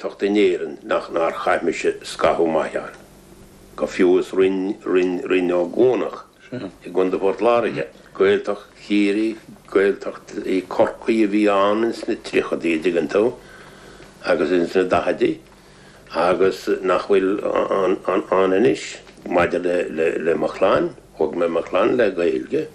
tacht in Éirinn nach nár chaith mise scaitheamh maith ann, go fiú is Rinn Ó gCuanach i gContae Phort Láirge. Gaeltacht Chiarraí, Gaeltacht Chorcaí a bhí ann ins na tríochaidí, a dtuigeann tú, agus ins na daichidí agus nach bhfuil ann anois. Maidir le mo chlann, thóg mé mo chlann le Gaeilge.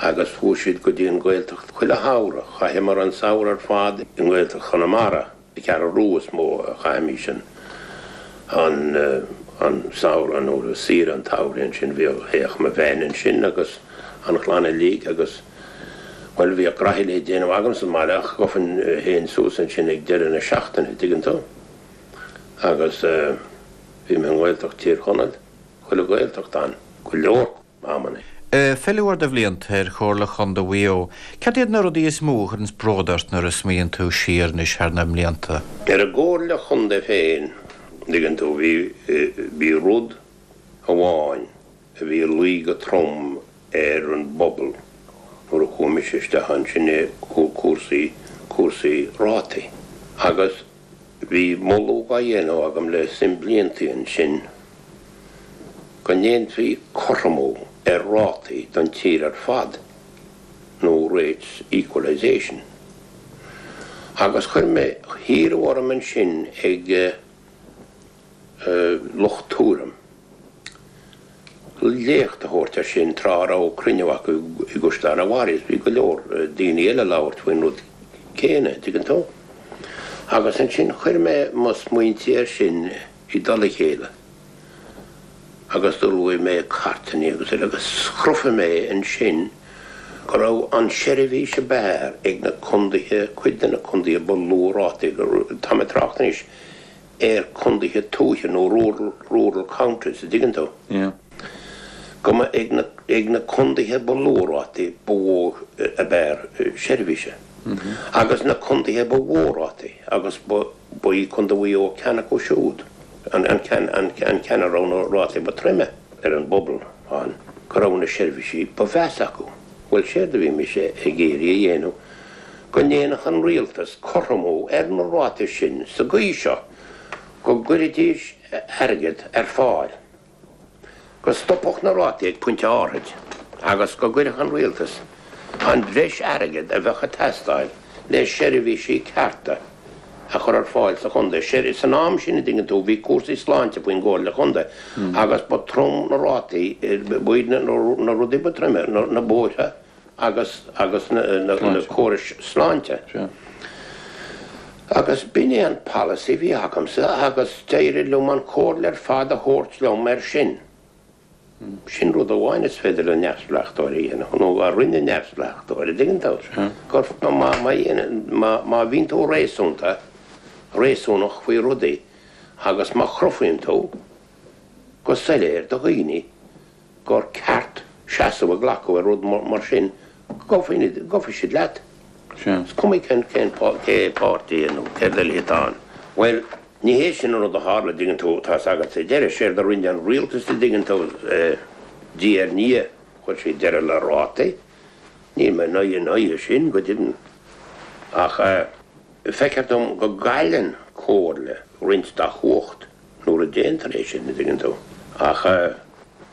agus chuaigh siad go dtí an Ghaeltacht chuile shamhradh. Chaitheamar an samhradh ar fad i nGaeltacht Chonamara, An Cheathrú Rua is mó a chaithimís an samhradh nó saoire an tsamhraidh ansin. Bhíodh, théadh mo bhean ansin agus an chlann uilig agus, bhuel, bhíodh graithe le déanamh agam sa mbaile ach ghabhfainn fhéin suas ansin ag deireadh na seachtaine, an dtuigeann tú? Agus bhí mé i nGaeltacht Thír Chonaill, chuile Ghaeltacht ann, go leor. amanna. An-phíleáil de bhlianta ar Chomhairle Chondae Mhaigh Eo, cad iad na rudaí is mó a chuireanns bród ort nuair a smaoiníonn tú siar anois thar na blianta? Ar an gComhairle Chondae féin, dtuigeann tú, bhí, bhí rud amháin a bhí ag luí go trom ar an bpobal nuair a chuaigh mise isteach ann, sin é cúrsaí, cúrsaí rátaí agus, Bhí moladh á dhéanamh agam le suim blianta ansin go ndéanfaí cothromú ar rátaí don tír ar fad, nó rates equalisation, agus chuir mé, hiarradh orm ansin ag. lucht Tuairim léacht a thabhairt ar sin tráth a raibh cruinniú acu i gCaisleán an Bharraigh. Bhí go leor daoine eile ag labhairt faoin rud céanna, an dtuigeann tú? Agus ansin chuir mé mo smaointe air sin i dtoll a chéile agus d'ullmhaigh mé cairteanna agus uile agus chruthaigh mé ansin go raibh an tseirbhís ab fhearr ag na condaetha, cuid de na condaetha ba lú rátaí, tá mé ag trácht anois ar condaetha tuaithe nó rural, rural counties a dtuigeann tú. Yeah. go mba ag na, ag na condaetha ba lú rátaí ba mhó ab fhearr seirbhíse. Mm-hmm. Agus na condaetha ba mhó rátaí agus ba, ba í Contae Mhaigh Eo ceann acu siúd, an, an ceann, an, an ceann a raibh na rátaí ba troime. ar an bpobal ann go raibh na seirbhísí ba mheasa acu. Bhuel, séard a bhí mise ag iarraidh a dhéanamh go ndéanfadh an Rialtas cothromú ar na rátaí sin sa gcaoi seo go gcuirfidís airgead ar fáil, go stopfadh na rátaí ag pointe áirid agus go gcuirfeadh an Rialtas an bhreis airgid a bheadh ag teastáil le seirbhísí cearta a chur ar fáil sa Chontae. San am sin, a dtuigeann tú, bhí cúrsaí sláinte faoin gComhairle Chontae agus ba throm na rátaí, b'iad na rudaí ba troime, na bóithre, agus agus na córais sláinte. Agus b'in é an polasaí a bhí agamsa agus d'éirigh liom an chomhairle ar fad a thabhairt liom air sin. Sin rud amháin is féidir le neamhspleách a dhéanamh, nó a rinne neamhspleách, a' dtuigeann tú? Má bhíonn tú réasúnta, réasúnach faoi rudaí agus má chruthaíonn tú go soiléir do dhaoine gur ceart seasamh a ghlacadh ar rud mar sin go dtiocfaidh siad leat. Is cuma cén páirtí nó céard eile atá ann. Bhuel, ní hé sin an rud a tharla, dtuigeann tú, tá fhios agat, sa deireadh. Séard a rinne an rialtas, dtuigeann tú, diaidh ar ndiaidh, chuir siad deireadh le rátaí. Níl mé ina aghaidh sin, go deimhin. Ach feictear dom go gcailleann Comhairle roinnt dá chumhacht. Nuair a déantar é sin, a dtuigeann tú. Ach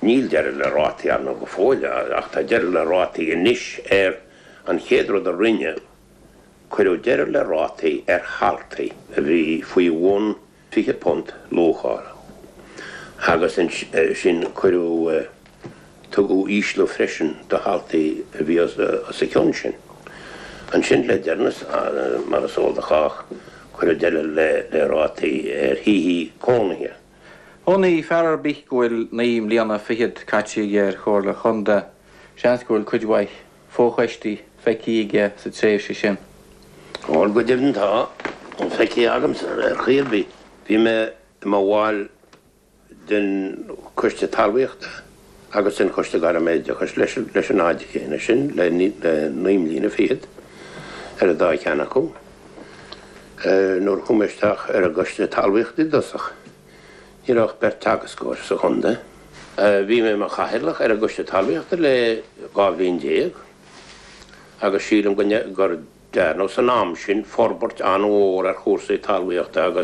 níl deireadh le rátaí ar ndóigh go fóill, ach tá deireadh le rátaí anois ar an chéad rud a rinneadh, cuireadh deireadh le rátaí ar thaltaí a bhí faoi bhun £20 luachála agus ansin cuireadh. Tugadh ísliú freisin do thaltaí a bhí os a chionn sin. Ansin, le deireanas, mar is eol do chách, cuireadh deireadh le rátaí ar thithe cónaithe. Aon fhear ar bith go bhfuil naoi mbliana fichead caite aige ar Chomhairle Chontae, seans go bhfuil cuid mhaith fochoistí feicthe aige sa tréimhse sin. Bhuel, go deimhin tá, feicthe agamsa ar chaoi ar bith. Bhí mé i mo bhall. den Choiste Talmhaíochta agus den Choiste Gairm-Oideachais leis an fhad chéanna sin, le naoi mbliana fichead ar an dá cheann acu, nuair a chuaigh mé isteach ar an gCoiste Talmhaíochta i dtosach. Ní raibh ach beirt teagascóirí sa chontae. Bhí mé i mo chathaoirleach ar an gCoiste Talmhaíochta le dhá bhliain déag agus sílim gur dearnadh san am sin forbairt an-mhór ar chúrsaí talmhaíochta agus,